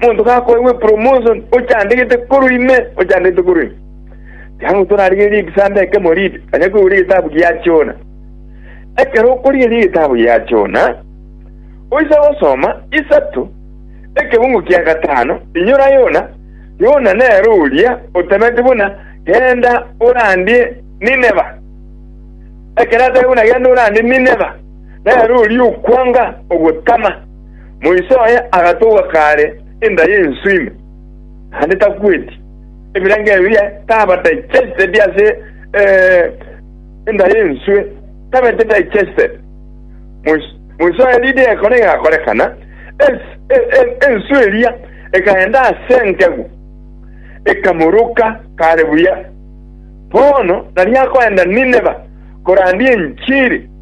Monto gakoegwe promotion ochandegete korwa ime, ochandegete korwa ime. Tiangu torarigererie ekisaamba ekemo riri, onye koigure egetabu gia Jona. Ekero okorigereria egetabu gia Jona, oise gosoma isato, ekebungo kia gatano, inyora Yona, Yona nere oria otemeti buna genda orandie Nineva. Ekero atebe buna genda orandie Nineva, nere oria okwanga ogotama. Moiso oye agatogwa kaare enda y'enswe ime, naende takweti. Ebirengererio biria taba digested ase enda y'enswe, tabeti digested. Moiso moiso oye riire egekone egakorekana, ens- e- e- enswe eria ekaenda ase engegu, ekamoroka kaare buya. Bono nari akoenda Nineva korandia enchiri.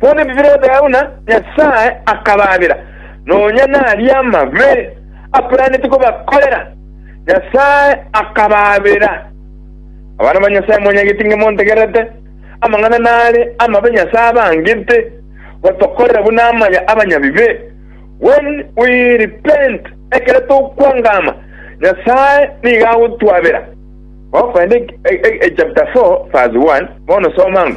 Bono ebi birobeo na Nyasae akabaabera, nonya naria amabe akoiranetie kobakorera, Nyasae akabaabera. Abana ba Nyasae mwanyagete inge montegererete amang'ana nare amabe Nyasae abangete gotokorera buna amaya abanyabibe, when we repent, ekero tokwangama, Nyasae nigo agotwabera. Gokogenda e- e- e- chapter 4 verse 1, bono soma ng'o.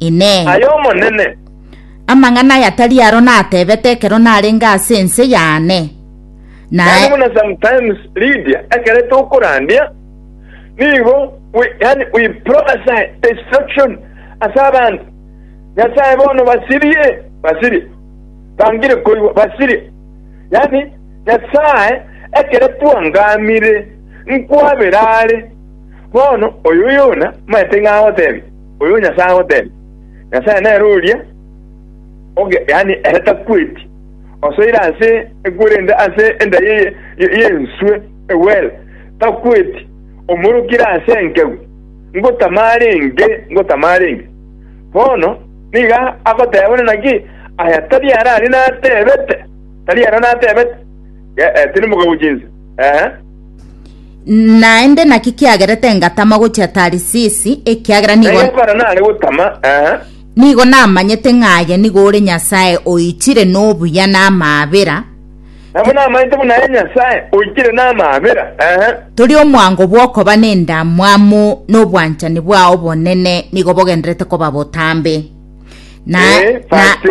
Inee! Ay'Omonene. Amang'ana aya tari aro natebete ekero narenge ase ense y'Anne? Naende buna sometimes Lydia ekero tokorandia, nigo we, yani we prophesy destruction ase abanto. Nyasae bono basirie, basirie, bangire koigwa, basirie. Yani Nyasae ekero twangamire nkwabera are, bono oyo Yona maete ng'agotebia. Oyo Nyasae agoteebia, Nyasae nere oria oge, yaani ere takweti, osoire ase ekwerende ase endai eye y'enswe egwere, takweti, omorokire ase enkegu, ngotama arenge, ngotama arenge. Bono nigo agoteeba buna naki aya tari arare nateebete, tari ara nateebete, eh, eh, tiri mokagochi inse, eh, eh. Naende naki kiagerete ngatama gochia Tarisisi, ekiagera nigo Naye okora nare gotama, eh, nigo namanyete ng'a aye nigo ore Nyasae oichire nobuya na amaabera, nabo namanyete buna aye Nyasae oichire namaabera, eh, tori omwango bw'okoba nendamwamu nobwanchani bwao bonene nigo bogenderete koba botambe. Na, eh, na, verse